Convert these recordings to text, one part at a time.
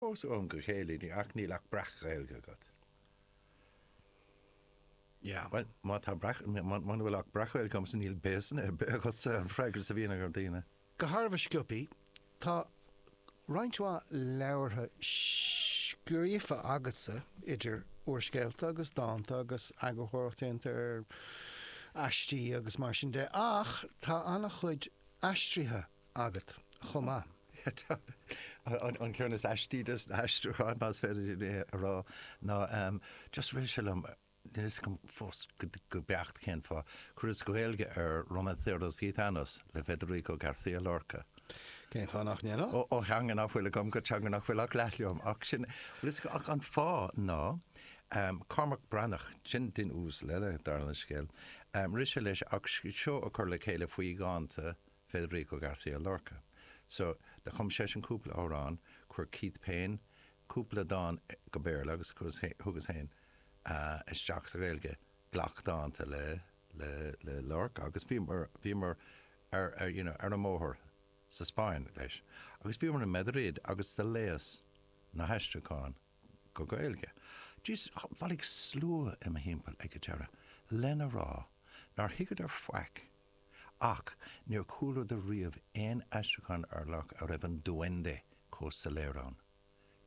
Ós ó am go chéile ní ach níl ach breac-Ghaeilge agat. Yeah, bhuel, má tá breac, muna bhfuil ach breac-Ghaeilge agamsa níl béasa ar bith agatsa an freagra is a bhíonn ag na daoine. De thairbhe scríofa, tá roinnt mhaith leabhartha scríofa agatsa idir úrscéalta agus dánta agus eagarthóireacht déanta ar aistí agus mar sin de ach tá an-chuid aistrithe agat chomh maith. An ceann is aistí de na haistriúcháin, más féidir liom é a rá, ná just rith sé liom, níl a fhios agam fós go beacht cén fáth, cur as Gaeilge ar Romanceros Gitanos le Federico García Lorca. Cén fáth nach ndéanfá? Ó theanga nach bhfuil agam go teanga nach bhfuil ach leath liom. Ach sin, bhfuil a fhios agat, an fáth ná Cormac Breathnach, sin duine uasal eile, dála an scéil, rith sé leis ach seó a chur le chéile faoi dhánta, Federico García Lorca. So, do chum seisean cúpla amhrán, chuir Keith Payne cúpla dán go Béarla agus thugas féin isteach sa Ghaeilge glac dánta le, le, le Lorca agus bhíomar, bhíomar ar, you know, ar an mbóthar sa Spáinn leis agus bhíomar i Madrid agus do léigheas na haistriúcháin go Gaeilge. Jeez, bhailigh slua i mo thimpeall ag an deireadh lena rá nár thuigeadar faic Ach níor chualadar riamh aon aistriúchán ar Lorca a raibh an Duende comh soiléir ann.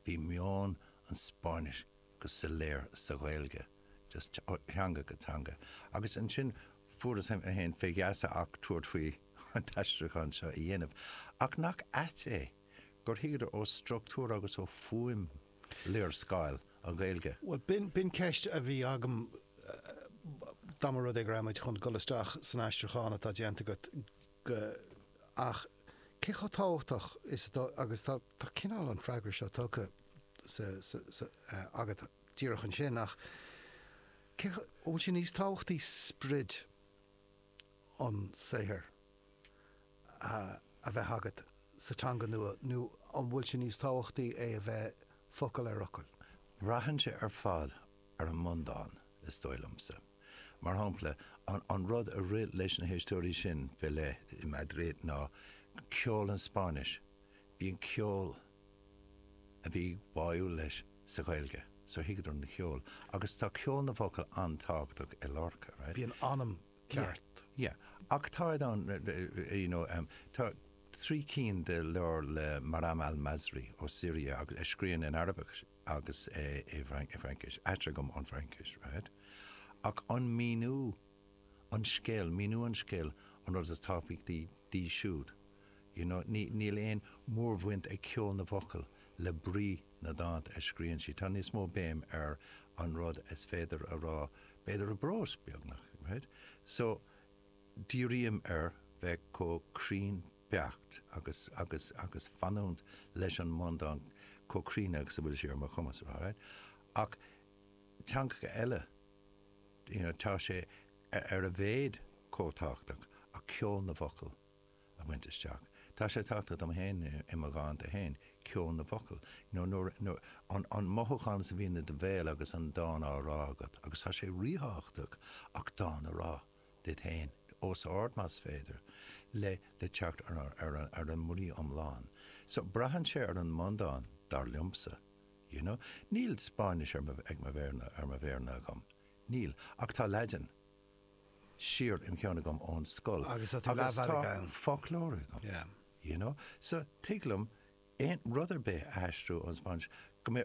Bhí meon an Spáinnis go soiléir sa Ghaeilge, just ó theanga go teanga. Agus ansin fuaireas féin fé gheasa ach tabhairt faoi an t-aistriúchán seo a dhéanamh. Ach nach ait é gur thuigeadar ó structúr agus ó fhuaim na véarsaí as Gaeilge. Bhuel, b'in ceist a bhí agam dá mba rud é go raibh muid chun dul isteach san aistriúchán atá déanta agat go, ach cé chomh tábhachtach is atá, agus tá cineál an freagra seo tugtha sa, agat díreach ansin, ach cé, an bhfuil sé níos tábhachtaí sprid an saothair? a bheith agat sa teanga nua nó an bhfuil sé níos tábhachtaí é a bheith focal ar fhocal? Braitheann sé ar fad ar an mbundán, is dóigh liomsa. Mar shampla, an rud a rith leis na héisteoirí sin fé leith i Madrid ná ceol an Spáinnis, bhí an ceol a bhí báúil leis sa Ghaeilge, so thuigeadar an ceol. Agus tá ceol na bhfocal an-tábhachtach i Lorca, right? Bhí an t-anam ceart. Yeah, yeah. Ach táid ann, you know, em, tá trí cinn de leabhair le Maram al-Masri ó Siria agus a scríonn in Araibis agus e i bhFrainc, i bhFraincis, aistrithe agam ón bhFraincis, right? Ach an míniú an scéal, míniú an scéal an rud is tábhachtaí díobh siúd, You know, níl aon mórbhaint ag ceol na bhfocal le brí na ndánta a scríonn sí. Tá níos mó béim ar an rud is féidir a rá, b'fhéidir i bprós, beagnach, right? So, dírím ar bheith chomh cruinn beacht agus, agus, agus fanúint leis an mbundán chomh cruinn agus a bhfuil sé ar mo chumas, alright? Ach teangacha eile, you know, tá sé ar a mhéid chomh tábhachtach, ach ceol na bhfocal, a bhaint isteach. Tá sé tábhachtach dom féin i mo dhánta féin, ceol na bhfocal, nó an mothúchán sin a bhíonn i do bhéal agus an dán á rá agat, agus tá sé ríthábhachtach dán a rá, duit féin, os ard más féidir, le teacht ar an mbrí iomlán. So, braitheann sé ar an mbundán, dar liomsa, you know. Níl Spáinnis ar mo mhéara agam, níl, ach tá Laidin, siar im cheann agam ón scoil agus tá foclóir agam you know so tig liom aon rud ar bith a aistriú ón Spáinnis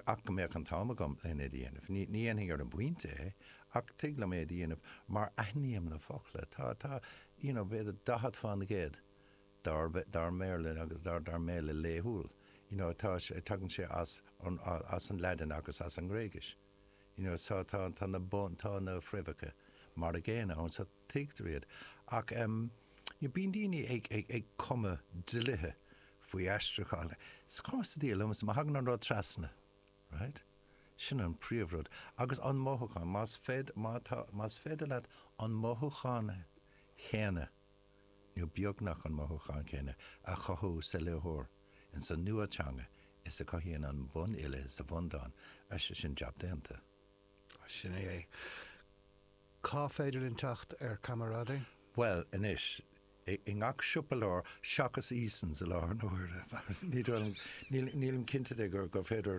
ach go mbeadh an t-am agam lena dhéanamh. Ní dhéanfainn ar an bpointe é ach tig liom é a dhéanamh mar aithním na focla. Tá, tá, you know b'fhéidir daichead faoin gcéad dár, dár mBéarla agus dár, dár mBéarla laethúil you know tá sé, tagann sé as an, as an Laidin agus as an nGréigis. you know so tá tá na bun tá na fréamhacha mar an gcéanna ann so tuigtear iad ach em you know bíonn daoine ag ag ag cumadh dlíthe faoi aistriúchán is cuma sa diabhal liomsa má thagann an rud trasna right sin an príomhrud agus an mothúchán más féidir má tá más féidir leat an mothúchán céanna a nó beagnach an mothúchán céanna a chothú sa léitheoir ins an nua teanga is a cothaíonn an bunfhile sa bhundán ansin sin jab déanta. Sin é. Cá féidir linn teacht ar Camaraderie? Bhuel, anois, i ngach siopa leabhar, seachas Easons i láthair na huaire, nílim cinnte de gur féidir